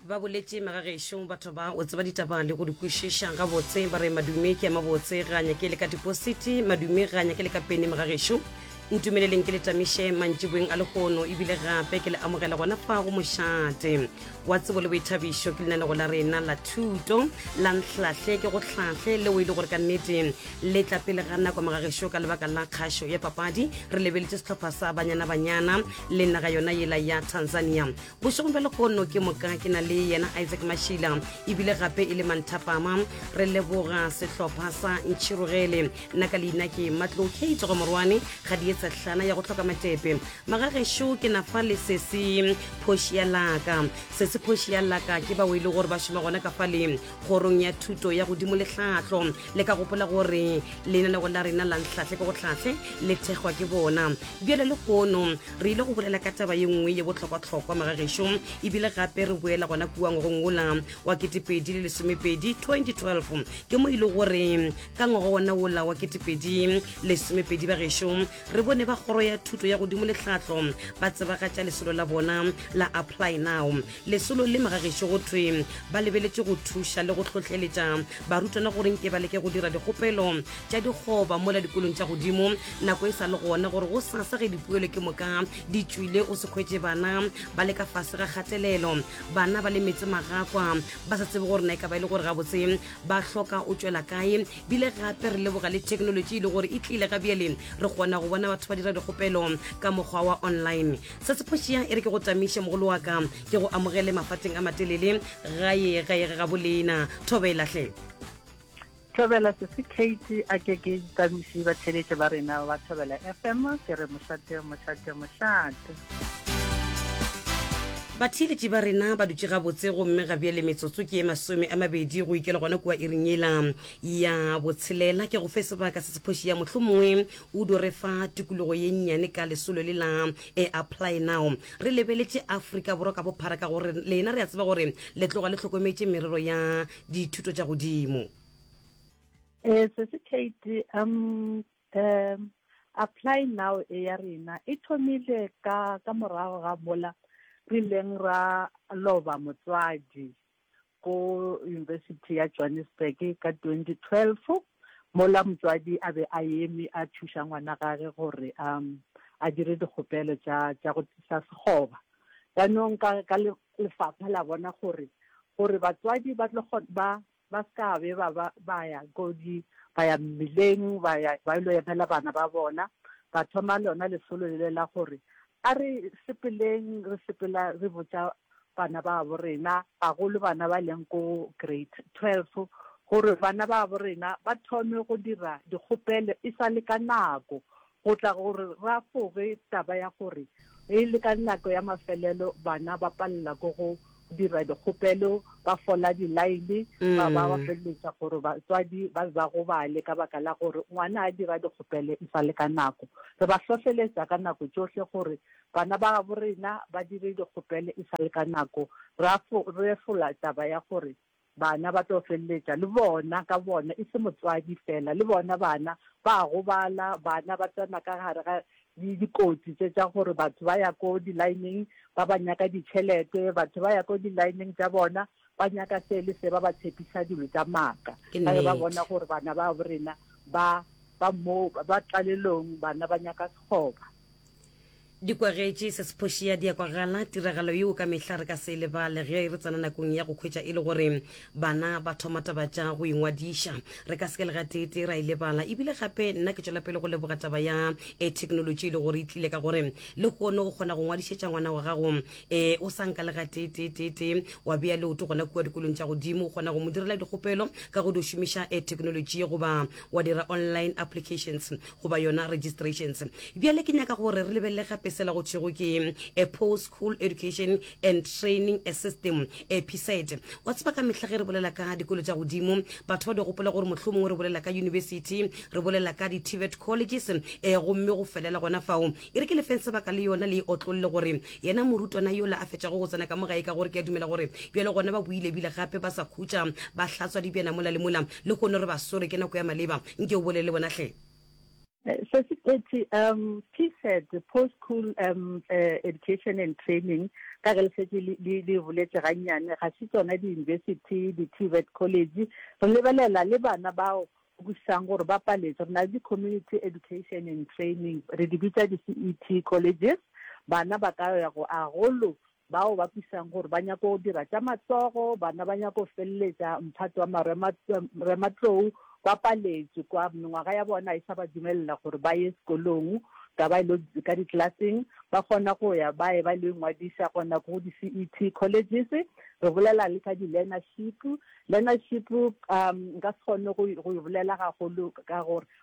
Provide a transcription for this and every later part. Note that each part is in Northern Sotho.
ba boletše magagešo batho ba o tseba ditaba le go di kwešiša gabotse ba re madume ke ya mabotse ga nyake le ka dipositi madume ga nyake le ka pene magagešo ntumeleleng ke le tamiše mantšiboeng a legono ebile gape ke le amogela gona fa go mošate wa tsebo le boithabišo ke lenanego la rena la thuto la nhlahle ke go hlahle leo e le gore ka nnete le tla pele ga nako magagešo ka lebaka la kgašo ya papadi re lebeletse setlhopha sa banyana banyana le naga yona yela ya tanzania bošegong bja legono ke moka ke na le yena isaac mashila ebile gape e le manthapama re leboga sehlopha sa ntšhirogele nna ka leina ke matlo kate go morwane ga di etsa hlana ya go tlhoka matepe magagešo ke na fa le sese phoši ya laka sese phoši ya laka ke bao e le gore ba šoma gona ka fa le kgorong ya thuto ya godimo le tlhahlo le ka gopola gore lenaneo la rena la ntlhahle ke go tlhahle le thekgwa ke bona bjale le gono re ile go bolela ka taba ye nngwe ye bohlokwahlokwa magagešo ebile gape re boela gona kua ngwagong wola wa ketepedi le lesomepedi 2012 ke mo e le gore ka ngwaga wona wola wa ketepedi lesomepedi bagešo re bone ba kgoro ya thuto ya godimo le tlhatlo ba tsebagatša lesolo la bona la apply now lesolo le magageše go thwe ba lebeletše go thuša le go hlohleletša barutwana gore nke ba leke go dira dikgopelo tša dikgoba mola dikolong tša godimo nako e sa le gona gore go sasa ge dipoelo ke moka di tšwile o se kgwetše bana ba le ka fase ga kgatelelo bana ba le metse magakwa ba sa tsebe gore na e ka ba e le gore gabotse ba hloka o tšwela kae bile gape re leboga le thekenolotši e le gore e tlile ga bjale re kgona go bona batho ba dira dikgopelo ka mokgwa wa online se se phošea e re ke go tamiše mogolo wa ka ke go amogele mafateng a matelele gae gae ga bolena thobelahle thobela sese kate a ke ke tamiše batheletše ba rena ba thobela fm ke re mošate mošate mošate Batheeletši ba rena ba dutše gabotse gomme ga bjale metsotso ke ye masome a mabedi go ikela gona kua iring yela ya botshelela. Ke go fe sebaka se se phoši ya mohlomongwe o do re fa tukulugo ye nnyane ka lesolo le la e Apply Now. Re lebeletše Afrika Borwa ka bophara ka gore lena re a tseba gore le tloga le hlokometše merero ya dithuto tša godimo. Ee, Sesi Kate, a Um Apply Now e ya rena e thomile ka ka morago ga mola re ileng ra loba motswadi ko University ya Johannesburg ka 2012, mola motswadi a be a eme a thuša ngwana gage gore a a dire dikgopelo tša tša go tisa sekgoba. Jaanong ka ka lefapha la bona gore gore batswadi ba tlo ba Ba se ka be ba ba ba ya ko di, ba ya mmileng ba ya ba ilo emela bana ba bona, ba thoma lona lesolo lele la gore, A re sepeleng re sepela re botša bana babo rena, gagolo bana ba leng ko grade twelve, gore bana babo rena ba thome go dira dikgopelo e sa le ka nako, Go tla go re rafoge taba ya gore e le ka nako ya mafelelo bana ba palela ko go dira dikgopelo, ba fola dilaene, ba ba ba feleletša gore batswadi ba be ba gobale ka baka la gore ngwana a dira dikgopelo e sa le ka nako. Re ba hlohleletša ka nako tšohle gore bana ba gabo rena ba dire dikgopelo e sa le ka nako. Ra refola taba ya gore Bana ba tlo feleletša le bona ka bona, e se motswadi feela, le bona bana ba a gobala, bana ba tsena ka gare ga dikotsi tše tša gore batho ba ya ko di-line-ng ba ba nyaka ditšhelete, batho ba ya ko di-line-ng tša bona ba nyaka se le se, ba ba tshepisa dilo tša maaka Ke ka ge ba bona nnete. gore bana babo rena ba ba mo ba tlalelong, bana ba nyaka sekgoba. Di kwagetše se se phošea, di a kwagala, tiragalo yeo ka mehla re ka se e lebale ge re tsena nakong ya go hwetša e le gore bana ba thoma taba tša go ingwadiša. Re ka se ke le gateetee ra e lebala. E bile gape nna ke tšwela pele go leboga taba ya e theknolotši e le gore e tlile ka gore lehono o kgona go ngwadišetša ngwana wa gago e o sa nka le gateeteeteetee wa bea leoto gona kua dikolong tša godimo. O kgona go mo direla dikgopelo ka go di šomiša e theknolotši goba wa dira online applications goba yona registrations. Bjale ke nyaka gore re lebelele gape sela go thwego ke a Post School Education and Training a System, a PSET. Wa tseba ka mehla ge re bolela ka dikolo tša godimo, batho ba di gopola gore mohlomongwe re bolela ka yunibesithi, re bolela ka di-TVET colleges, ee, gomme go felela gona fao. E re ke le feng sebaka le yona le e otlolle gore yena morutwana yola a fetšago go tsena ka mo gae ka gore ke a dumela gore bjale gona ba boile ebile gape ba sa khutša ba hlatswa dibjana mola le mola, Lehono re ba swere ke nako ya maleba. Nke o bolele le bona hle. Sesi Qethi, um PSET, Post School um Education and Training, ka ge le šetše le le boletše gannyane, ga se tsona di-university, di-TVET college. Re lebelela le bana bao o kwešišang gore ba paletše. Re na le di-Community Education and Training, re di bitša di-CET colleges. Bana ba ka ya go a golo Bao ba kwešišago gore ba nyaka go dira tša matsogo, bana ba nyaka go feleletša mphato wa marematlou, ba paletšwe kwa mengwaga ya bona ga e sa ba dumelela gore ba ye sekolong ka ba ile ka dikilaseng. Ba kgona go ya ba eba ile go ingwadiša go nako go di-CET colleges. Re bolela le ka di-learnership. Learnership nka se kgone go e bolela gagolo ka gore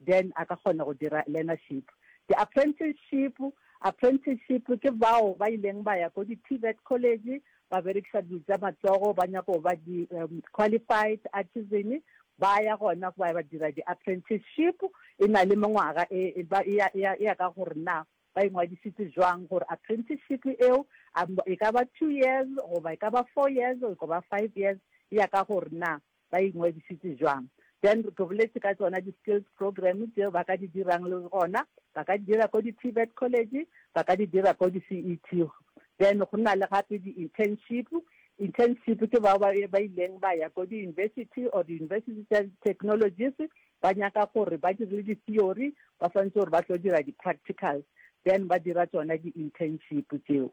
Then a ka kgona go dira learnership. Di-apprenticeship, Apprenticeship ke bao ba ileng ba ya ko di-TVET college, ba berekiša dilo tša matsogo, ba nyaka go ba di, um, qualified artisan, ba ya gona ba ya ba dira di-apprenticeship. E na le mengwaga e, e ba, e ya, e ya, e ya ka gore na ba ingwadisitse jwang gore apprenticeship eo a, e ka ba two years goba e ka ba four years goba five years, e ya ka gore na ba ingwadišitše bjang. Then ke boletše ka tšona di skills program tšeo ba ka di dirang le gona ba ka di dira ko di TVET college, ba ka di dira ko di CET. Then go na le gape di internship, internship ke bao ba ba ileng ba ya ko di university or di university tša technologies ba nyaka gore ba dirile di theory ba swantšwe gore ba tlo dira di practicals then ba dira tšona di internship tšeo.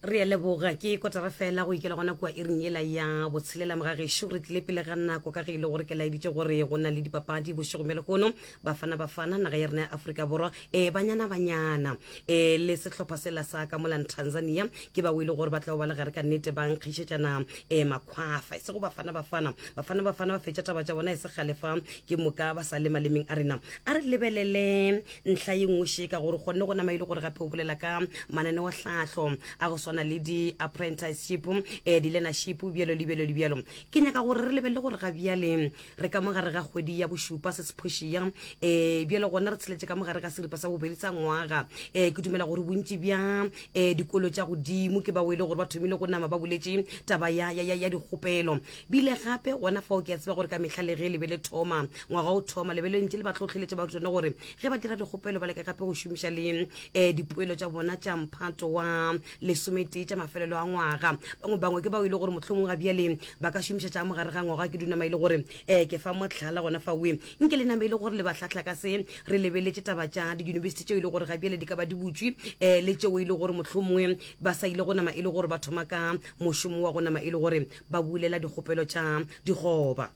re a leboga ke kotara fela go ikela gona kua iring yela ya botshelela mogagešo re tlile pele ga nako ka ge e le gore ke laeditše gore go na le dipapadi bošego bja lehono bafana bafana naga ya rena ya aforika borwa e banyana banyana e le sehlopha sela sa ka molan tanzania ke ba o e le gore ba tla ba le gare ka nnete ba nkgišetšana e makgwafa e sego bafana bafana bafana bafana ba fetša taba tša bona e se galefa ke moka ba sa le malemeng a rena a re lebelele ntlha ye nngwe šeka gore gonne go nama e le gore gape o bolela ka mananeotlhahlo a go swana le di-apprenticeship eh, di-learnership bjalo le bjalo le bjalo ke nyaka gore re lebelele gore ga bjale re ka mogare ga kgwedi ya bošupa se sephošia um eh, bjalo gona re tsheletse ka mogare ga seripa sa bobedi sa ngwaga um ke dumela gore bontši bja um dikolo tša godimo ke bao e le gore ba thomile go nama ba boletše taba ya, ya, ya, ya dikgopelo Bile gape, gona fao ke a tseba gore ka mehla le ge le be le thoma, ngwaga o thoma, le be le ntše le ba hlohleletša barutwana gore ge ba dira dikgopelo ba leke gape go šomiša le um dipoelo tša bona tša mphato wa lesometee tša mafelelo a ngwaga. Bangwe bangwe ke bao e le gore mohlomongwe ga bjale ba ka šomiša tša mogare ga ngwaga. Ke dunama e le gore um ke fa mohlala gona faoe. Nke le name e le gore le ba hlahla ka se re lebeletše taba tša diyunibesithi tšeo e le gore ga bjale di ka ba di butšwe um le tšeo e le gore mohlomongwe ba sa ile go nama e le gore ba thoma ka mošomo wa go nama e le gore Ba bulela dikgopelo tša digoba.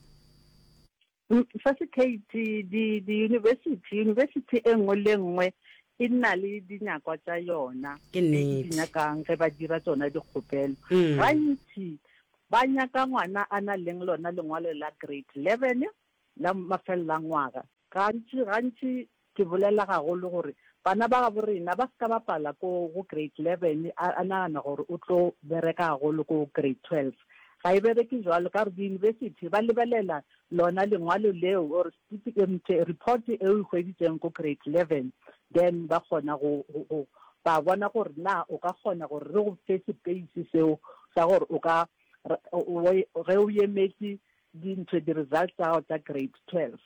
Mfasikeiti, di, diyunibesithi, yunibesithi e nngwe le nngwe e na le dinyakwa tša yona Ke tše e di nnete. nyakang ge ba dira tšona dikgopelo. Mm. Gantši ba nyaka ngwana a na leng lona lengwalo la grade 11 la mafelelangwaga. Gantši, gantši ke bolela gagolo gore bana ba gabo rena ba se ka bapala ko go grade eleven a, a nagana gore o tlo bereka gagolo ko grade twelve. Ga e bereke jwalo ka gore di-university ba lebelela lona lengwalo leo or certificate, report e o e hweditseng ko grade eleven, then ba kgona go, go, go ba bona gore na o ka kgona gore re go fe space seo sa gore o ka, ge o emetše Dintšhe, di-results tsa gago tsa grade twelve.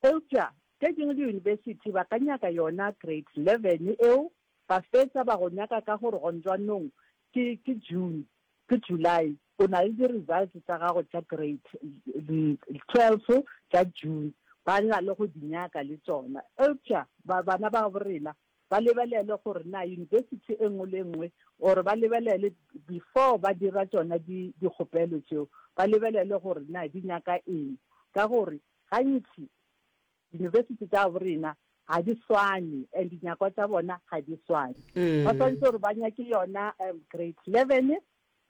Eupša tše dingwe diyunibesithi ba ka nyaka yona grade eleven eo, ba fetša ba go nyaka ka gore gonzwanong ke, ke June, ke July, o na le di-results tsa gago tša grade twelve tša June, ba na le go di nyaka le tšona. Eupša ba, bana ba gaborena ba lebelele gore na university e nngwe le e nngwe or ba lebelele before ba dira tšona di dikgopelo tšeo ba lebelele gore na di nyaka eng ka gore gantši university tša bo rena ga di swane and dinyakwa tša bona ga di swane mm. ba tshwanetse gore ba nyake yona um, grade eleven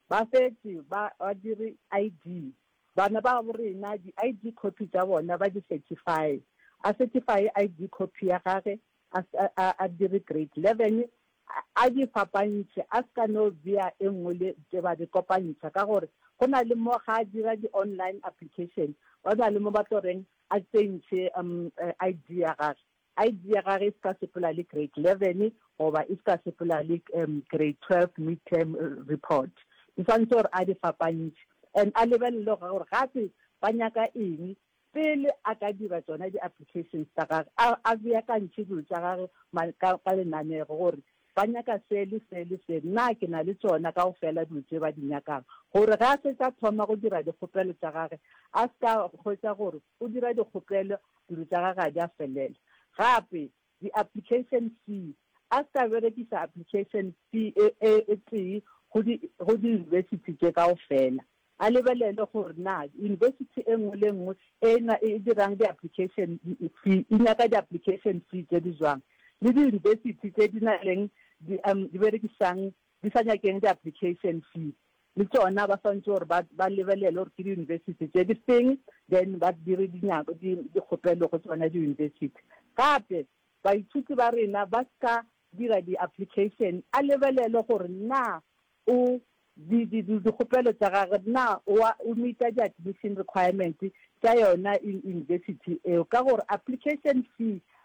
ba fetse ba dire i d bana ba bo rena di-i d copy tsa bona ba di-certify a certify i d copy ya gage a se a, a dire grade leven, a, a di fapantšhe, a se ka no bea e nngwe le, tše ba di kopantšha, ka gore go na le mo ga a dira di-online application, go na le mo ba tlo reng a tsentšhe um, ID ya gage. ID ya gage e se ka sepela le grade leven goba e se ka sepela le um, grade twelve mid-term report. Di swanetše gore a di fapantšhe and a lebelele gore gape ba nyaka eng. Pele a ka dira tšona di-applications tša gage, a, a beakantšhe dilo tša gage ma, ka, ka lenanego, gore ba nyaka se le se le se, na ke na le tšona kaofela dilo tše ba di nyakang, gore ge a fetša a thoma go dira dikgopelo tša gage, a se ka hwetša gore o dira dikgopelo dilo tša gage ga di a felela. Gape, The application fee, A se ka berekiša application fee e e tee go di go diyunibesithi tše kaofela. A lebelele gore na yunibesithi e nngwe le nngwe e na e dirang di-application fee e nyaka di-application fee tše di jwang le diyunibesithi tše di na leng di berekišang Di sa nyakeng di application fee le tšona ba swantše gore ba ba lebelele gore ke di university tše di feng then ba dire di nyako di di kgopelo go tšona di university. Gape baithuti ba rena ba ska dira di application a lebelele gore na o di di di dikgopelo tša gage na oa o meet-a di admission requirement tša yona university eo ka gore application fee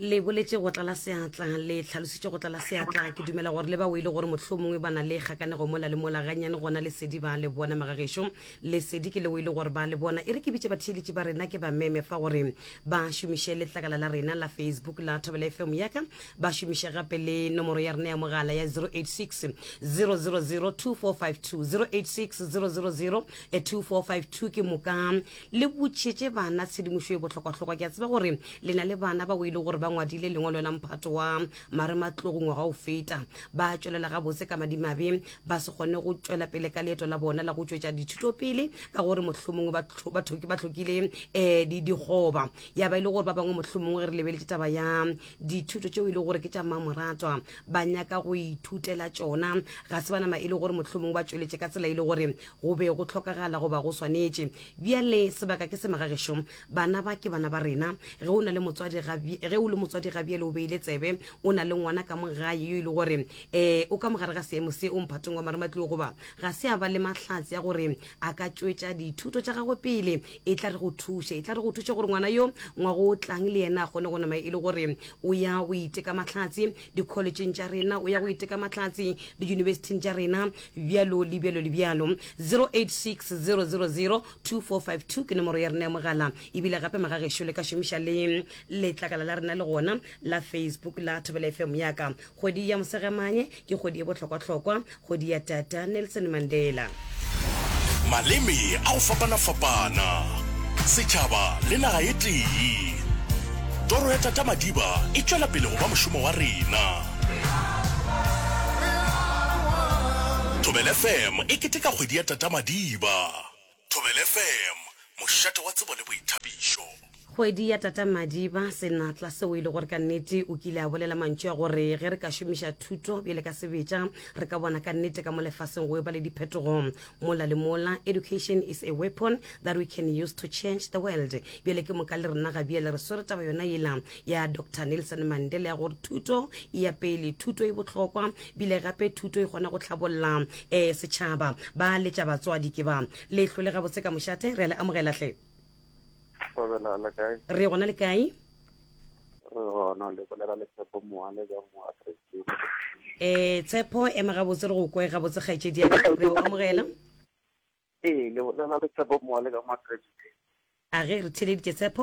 le boletše go tlala seatla le tlhalositše go tlala seatla ke dumela gore le ba o ile gore motlho mongwe ba na le kgakanego mola le mola gannyane gona lesedi ba le bona magagešo lesedi ke le o ile gore ba le bona e re ke bitše batheeletši ba rena ke ba meme fa gore ba šomiše letlakala la rena la facebook la thobela fm yaka ba šomiše gape le nomoro ya rena ya mogala ya 086 000 2452 086 000 2452 ke moka Le botšetše bana tshedimošo ye bohlokwahlokwa. Ke a tseba gore le na le bana bao e le gore ba ngwadile lengwalo la mphato wa Marematlogo ngwaga o feta. Ba a tšwelela gabotse ka madimabe ba se kgone go tšwela pele ka leeto la bona la go tšwetša dithuto pele ka gore mohlomongwe ba tlhokile um dikgoba. Ya ba e le gore ba bangwe mohlomongwe re lebeletše taba ya dithuto tšeo e le gore ke tša mmamoratwa ba nyaka go ithutela tšona. Ga se ba nama e le gore mohlomongwe ba tšweletše ka tsela e le gore Go be go hlokagala goba go swanetše. Bjale, sebaka ke se magagešo. Bana ba ke bana ba rena. Ge o na le motswadi ga, ge o le motswadi ga bjale o beile tsebe, o na le ngwana ka mo gae yo e le gore e, o ka mo gare ga seemo se, o mphatong wa marematlou, goba ga se a ba le mahlatse a gore a ka tšwetša dithuto tša gagwe pele, e tla re go thuše, e tla re go thuše gore ngwana yo ngwago o tlang le yena a kgone go nama e le gore o ya o iteka mahlatse, dikholetšheng tša rena o ya go iteka mahlatse diyunibesithing tša rena bjalo le bjalo le bjalo 0860002452 ke nomoro ya rena ya mogala ebile gape magagešo le ka šomiša le letlakala la rena le gona la facebook la thobela fm yaka kgwedi ya mosegamanye ke kgwedi e bohlokwahlokwa Kgodi ya Tata Nelson Mandela. Maleme a go fapana-fapana, setšhaba le naga e tee. Toro ya Tata Madiba e tšwela pele go ba mošomo wa rena. Thobela FM e keteka kgwedi ya Tata Madiba. Thobela FM, mošate wa tsebo le boithabišo. Kgwedi ya tata Madiba, senatla seo e lego re ka nnete o kile a bolela mantšu a gore ge re ka šomiša thuto bjale ka sebetša re ka bona ka nnete ka mo lefaseng go eba le diphetogo mola le mola. Education is a weapon that we can use to change the world. Bjale ke moka le rena Gabriel re swere taba yona yela ya dr nelson mandela ya gore thuto e ya pele thuto e bohlokwa bile gape thuto e kgona go tlhabolola um eh, setšhaba ba letša batswadi ke ba lehlo le gabotse ka mošate re a le amogelahle re gona le kae um tshepo ema gabotse re go kwe gabotse kgaetšedi ya re o amogela Ee, le bolela le Tshepo Moale ka Makreste. A ge re theeleditše Tshepo?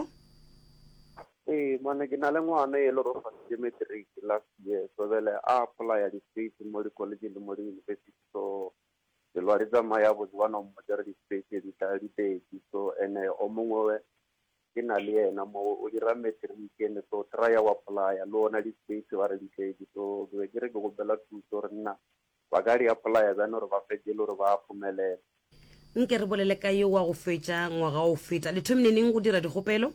Ee, mane ke na le ngwana e le gore o faditše matric last year, so bjale a apply-a di-space mo di-college le mo di-university, so dilo ga di tsamaye gabotse, ba no mmotša gore di-space tše di tla di pedi, so ene o mongwe ke na le yena mo o dira matric ene, so try-a o apply-a le ona di-space ba re di tletse, so ke be ke re ke kgopela thuso gore nna Ba ka reapolaya bjang gore ba fetše e le gore ba a phumelela? Nke re bolele ka yo wa go fetša ngwaga o feta. Le thomile neng go dira dikgopelo?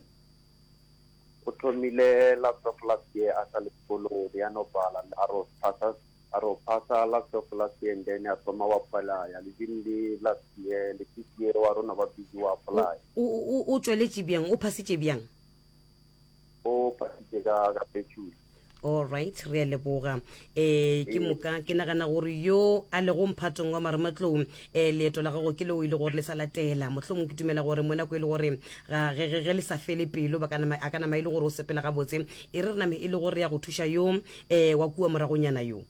O thomile last of last year a sa le sekolong o be a no bala a ro phasa a ro phasa last of last year and then a thoma wa polaya le din le last year le this year wa rona ba busy wa polaya. O o o tšweletše bjang? O phasitše bjang? o patitše ka ka petšule all right re a leboga um ke moka ke nagana gore yo a lego mphatong wa marematlou um leeto la gago ke leo e le gore le sa latela mohlomong ke dumela gore mo nako e le gore ge le sa fele pelo a ka nama e le gore o sepela gabotse e re re name e le gore ya go thuša yo um wa kua moragonyana yo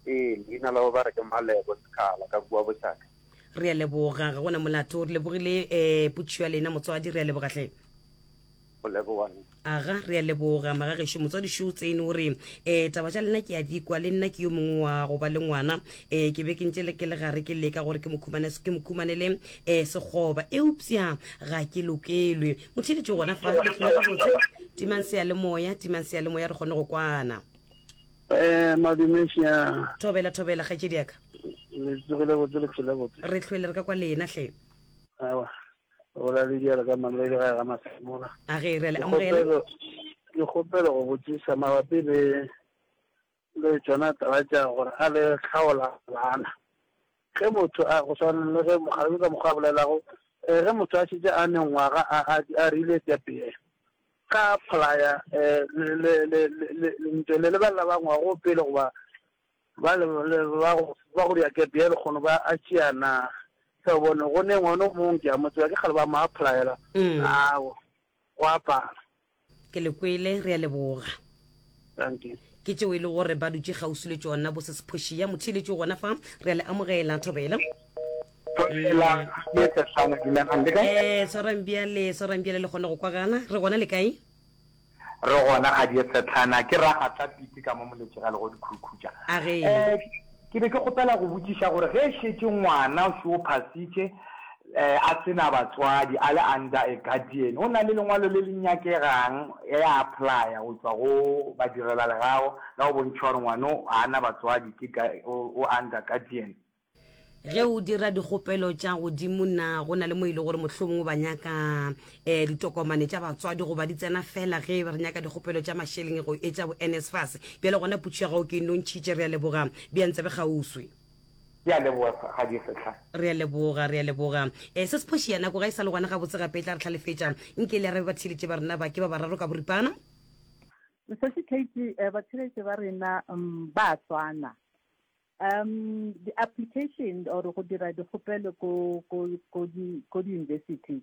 ee leina la ba re ke malebo sekgala ka kua bošaka re a leboga ga gona molato re lebogile um eh, putšo ya lena motswadi re a leboga hle go leboga aga re a leboga magagešu motswadi šo tsene o re um taba tša lena ke a di kwa le nna ke yo mongwe wa go ba le ngwana um ke be ke ntse le ke le gare ke leka gore ke mo khumane- ke mo khumanele um sekgoba eupša ga ke lokelwe motheletše gona fa gabotse timang seyalemoya timang seyalemoya re kgone go kwana Eh, madume sia. Thobela, Thobela, kgaetšedi ya ka. Le tsogile botse, le phela botse. Re hlwele re ka kwa lena, hle. Awa, go la le dialo ka mamele le ga ga masemola. A ge re le amogela. Ke kgopelo go botsisa mabapi le le tsona taba tša gore a le tlhaola bana. Ge motho a, go swana le ge mokgalabje ka mokgwa a bolelago, ee, ge motho a šetše a mengwaga a, a, a rile eupša pele ga a pholaya, ee, le, le, le, le, le, le ntše le lebelela ba ngwago pele goba ba le, le, ba go, ba go dira kepe ya lekgono ba a tšea na? Hle, o bone, go ne ngwana o mong, ke a mo tseba, ke kgale ba mo a pholayela, aa, go a pala. ke le kwele re a leboga ke tšeo e le gore ba dutse kgauswi le tšona bo sesephošia motho ile tšeo gona fa re a le amogela thobela ee tshwarang bjale tshwarang bjale le kgone go kwagana re gona le kae re gona ga di setlhana ke ragatla piti ka mo moletše ga le go dikhurukhuja a ge um Ke be ke kgopela go botšiša gore ge e šetše ngwana o se o phasitše, a se na batswadi, a le under a guardian, go na le lengwalo le le nyakegang ge a applya go tšwa go badirelalegago la go bontšha gore ngwano ga a na batswadi, ke o under guardian. Ge o dira dikgopelo tša godimo, na go na le mo e le gore mohlomongwe o ba nyaka? um ditokomane tša batswadi goba di tsena fela ge re nyaka dikgopelo tša mašeleng go etša bo nsfas bjale gona putšo ya gago ke nontšhitše re a leboga bjang tsebe kgauswi ke a leboga ga di setlha re a leboga re a leboga um se se phoši ya nako ga e sa le gona gabotse gape e tla re tlhalefetša nke le arabe ba theeletše ba rena ba ke ba bararo ka boripana Mosadi Katie, eh, batheletše ba rena um, ba swana. Um, di-application or go dira dikgopelo ko ko ko di ko di-university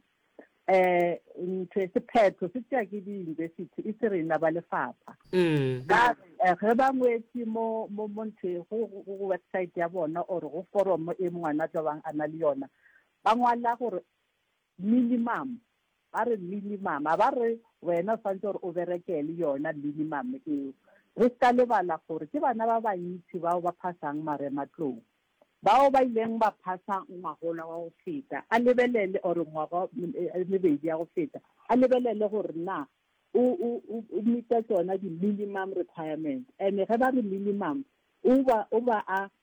eh ntho e sephetho se tšea ke di-university e se rena ba lefapha mm. ba eh, ge ba ngwetse mo mo mo ntho e, go go website ya bona or go foromo e ngwana tlo bang a na le yona ba ngwala gore Minimum, ba re minimum, a ba re wena o swanetše gore o berekele yona minimum eo. Re se ka lebala gore ke bana ba bantši bao ba phasang marematlou. Bao ba ileng ba phasa ngwagola wa go feta a lebelele, or ngwaga e mebedi ya go feta, a lebelele gore na o, o, o, o meet-a tšona di-minimum requirements. And ge ba re minimum, o ba, o ba a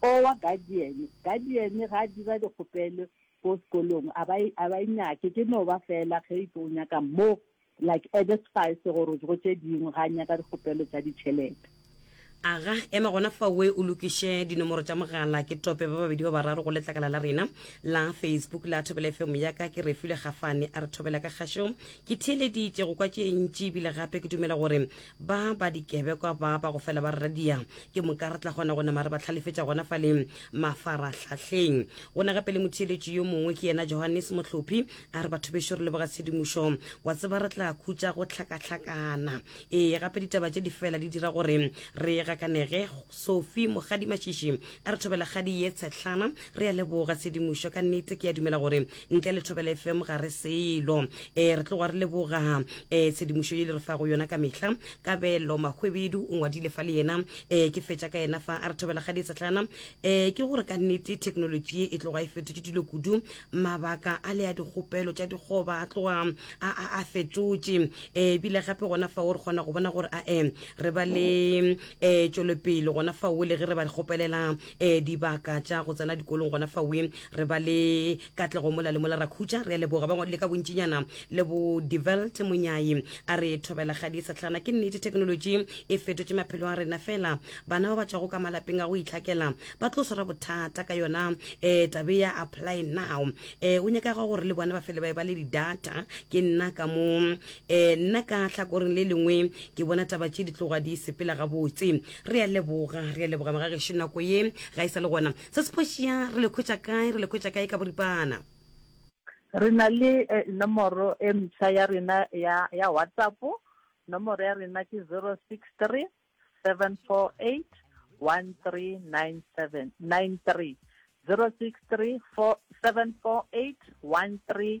O wa Guardian. Guardian ga a dira dikgopelo ko sekolong a ba a ba e nyake, ke no ba fela ge e tlo o nyaka mo like added spice gore go tše dingwe ga a nyaka dikgopelo tša ditšhelete. Aga, ema gona fao we o lokiše dinomoro tša mogala, ke tope ba babedi ba bararo go letlakala la rena la Facebook la Thobela FM. Ya ka ke Refilwe Gafane a re Thobela ka kgašo. Ke theeleditše go kwa tše ntši ebile gape ke dumela gore Ba ba dikebekwa ba ba go fela ba re radia, ke moka re tla kgona go nama re ba tlhalefetša gona fa le mafarahlahleng. Go na gape le motheeletši yo mongwe, ke yena Johannes Mohlophi, a re, Batho bešo re leboga tshedimošo. Wa tseba re tla khutša go hlakahlakana. Ee, gape ditaba tše di fela di dira gore re gakanege. Sophie Mogadimashishi a re, Thobelakgadi ye tshehlana, re a leboga tshedimošo. Ka nnete ke a dumela gore ntle le thobela fm ga re selo um re tloga re leboga um tshedimošo ye le re fa go yona ka mehla kabelo mahwebedu o ngwadile fa le yena um ke fetša ka yena fa a re thobela ga ditsetlana um ke gore ka nnete thekenolotši ye e tloga e fetotše dilo kudu mabaka a le a dikgopelo tša dikgoba a tloga a fetotše um ebile gape gona fa o re kgona go bona gore a um re ba le um tšwelopele gona fa o le ge re ba kgopelela um dibaka tša go tsena dikolong gona fawe re ba le katlego mola le mola ra khutša re a leboga ba ngwadile ka bontšinyana le bo develt monyai a re thobela ga di setlhana ke nnete thekenoloji e fetotše maphelo a rena fela bana ba ba tšwago ka malapeng a go itlhakela ba tlo swara bothata ka yona um tabe ya apply now um o nyakaga gore le bona ba fele ba e ba le di-data ke nna ka mo um nna ka tlhakoreng le lengwe ke bona taba tše di tloga di sepela gabotse re a leboga re a leboga magagešo nako ye ga e sa le gona se sephošia re le khwetša kae re le khwetša kae ka boripana re na le eh, nomoro e mtsha ya rena ya ya whatsapp nomoro ya rena ke 063 748 1397 93 063 748 13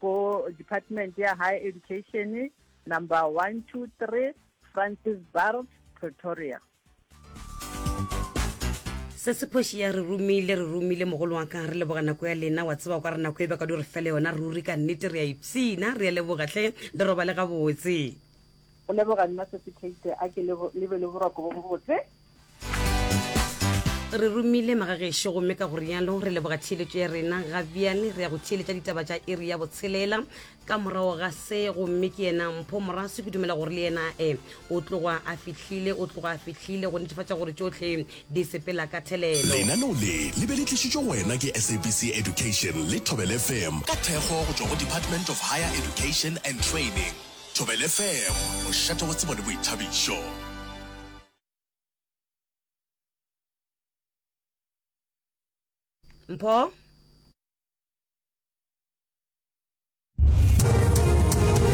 Go Department ya Higher Education, Number 123 Francis Baard, Pretoria. Se se phoši ya re romile re romile mogolo wa ka re leboga nako ya lena wa tseba kwa re nako e beka di re fele yona ruri ka nnete re a ipsina re a leboga hle le robale gabotse go leboga nna se se kate a ke lebe le boroko bo bobotse re romile magagešo gomme ka go rialo re leboga theeletšo ya rena ga bjale re ya go theeletša ditaba tša iri ya botshelela ka morago ga se gomme ke yena mpho morase ke dumela gore le yena e o tloga a fihlile o tloga a fihlile go netefatša gore tšotlhe di sepela ka thelelo lenaneo le le be le tlišitšwe go wena ke sabc education le thobel fm ka thekgo go tšwa go department of higher education and training thobel fm mošate wa tsebo le boithabišo Mpho?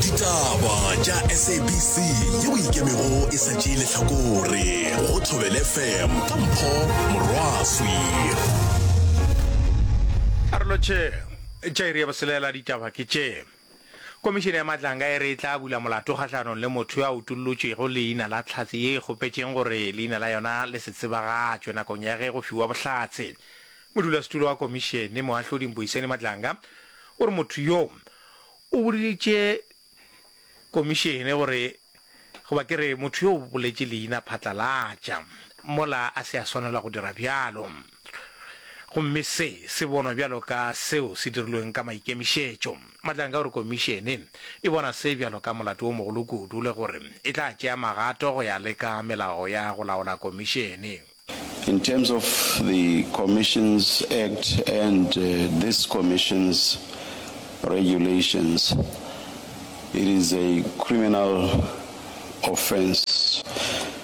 ditaba tša sabc ye o ikemego e sa tšee lehlakore go thobele fm ka mpho morwaswi arolotše tšairi ya boselela ditaba ke tše Komišene ya Matlanga e re e tla bula molato kgahlanong le motho yo a utollotšwego leina la Tlhatse ye e kgopetšeng gore leina la yona le se tsebagatšwe nakong ya ge go fiwa bohlatse. Modulasetulo wa komišene, Moahlodi Mboiseni Matlanga, o re motho yo o boditše komišene gore goba ke re motho yo o boletše leina phatlalatša mola a se a swanelwa go dira bjalo. gomme se se bonwa bjalo ka seo se dirilweng ka maikemišetšo. Mahlanka o re Komišene e bona se bjalo ka molato wo mogolo kudu le gore e tla tšea magato go ya le ka melao ya go laola Komišene. In terms of the Commissions Act and this Commission's regulations, it is a criminal offence.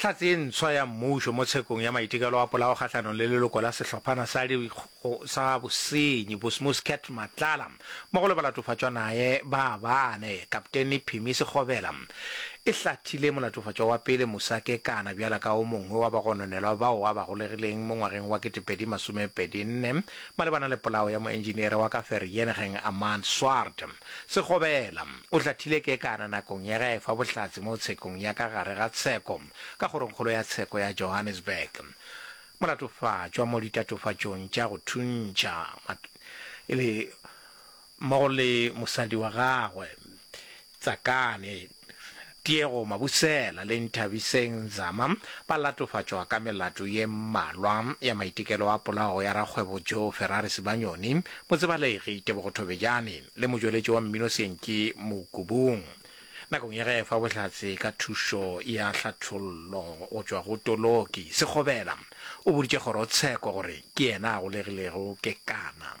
Hlatse e ntshwa ya mmušo mo tshekong ya maitekelo a polao kgahlanong le leloko la sehlophana sa di sa bosenyi Bosmos Cat Matlala mmogo le balatofatšwa naye ba bane. Kapteni Phimi Sekgobela e hlathile molatofatšwa wa pele Musa Kekana bjalo ka o mongwe wa bagononelwa bao a ba golegileng mo ngwageng wa 2024 malebana le polao ya moentšiniere wa ka Vereeniging Amaan Swart. Segobela o hlathile kekana nakong ya ge a efa bohlatse mo tshekong ya ka gare ga tsheko ka kgorongkgolo ya tsheko ya Johannesburg. Molatofatšwa mo ditatofatšong tša go thuntšha e le mmogo le mosadi wa gagwe Tsakane. Tiego Mabusela le Nthabiseng Nzama ba latofatšwa ka melato ye mmalwa ya maitekelo a polawo ya rakgwebo Joe Ferrari Sibanyoni, Motsebalegi Tebogo Thobejane le motšweletši wa mmino Syenki Mokubung nakong ya ge efa bohlatse ka thušo ya hlathollo go tšwa go toloki. Sekgobela o boditše kgorotsheko gore ke yena a golegilego kekana.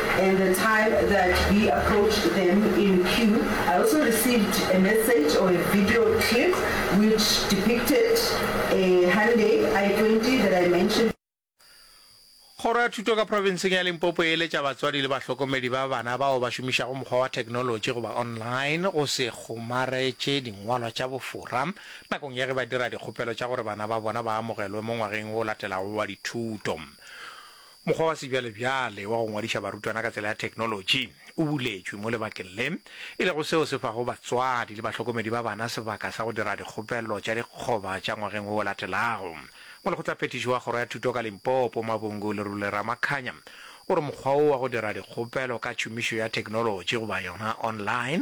and the time that we approached them in queue, I also received a message or a video clip which depicted a Hyundai I twenty that I mentioned. Kgoro ya Thuto ka Profenseng ya Limpopo e eletša batswadi le bahlokomedi ba bana bao ba šomišago mokgwa wa theknolotši goba online go se kgomaretše dingwalwa tša bofora nakong ya ge ba dira dikgopelo tša gore bana ba bona ba amogelwe mo ngwageng o latelago wa dithuto. Mokgwa wa sebjalebjale wa go ngwadiša barutwana ka tsela ya theknolotši o buletšwe mo lebakeng le, e lego seo se fago batswadi le bahlokomedi ba bana sebaka sa go dira dikgopelo tša dikgoba tša ngwageng wo o latelago. Molekgotlaphethiši wa Kgoro ya Thuto ka Limpopo, Mabungu Lerule Ramakhanya, o re mokgwa wo wa go dira dikgopelo ka tšhomišo ya theknolotši goba yona online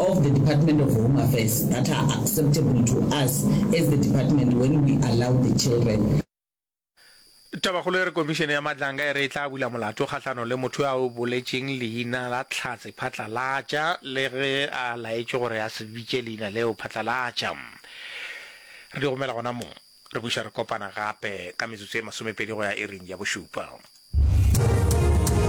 of the Department of Home Affairs that are acceptable to us as the department when we allow the children. Tabakgolo e re Komišene ya Matlanga e re e tla bula molato kgahlano le motho yo a o boletšeng leina la Tlhatse Phatlalatša le ge a laetšwe gore a se bitše leina leo Phatlalatša. Re di romela gona mo. Re buša re kopana gape ka metsotso e masomepedi go ya iring ya bošupa.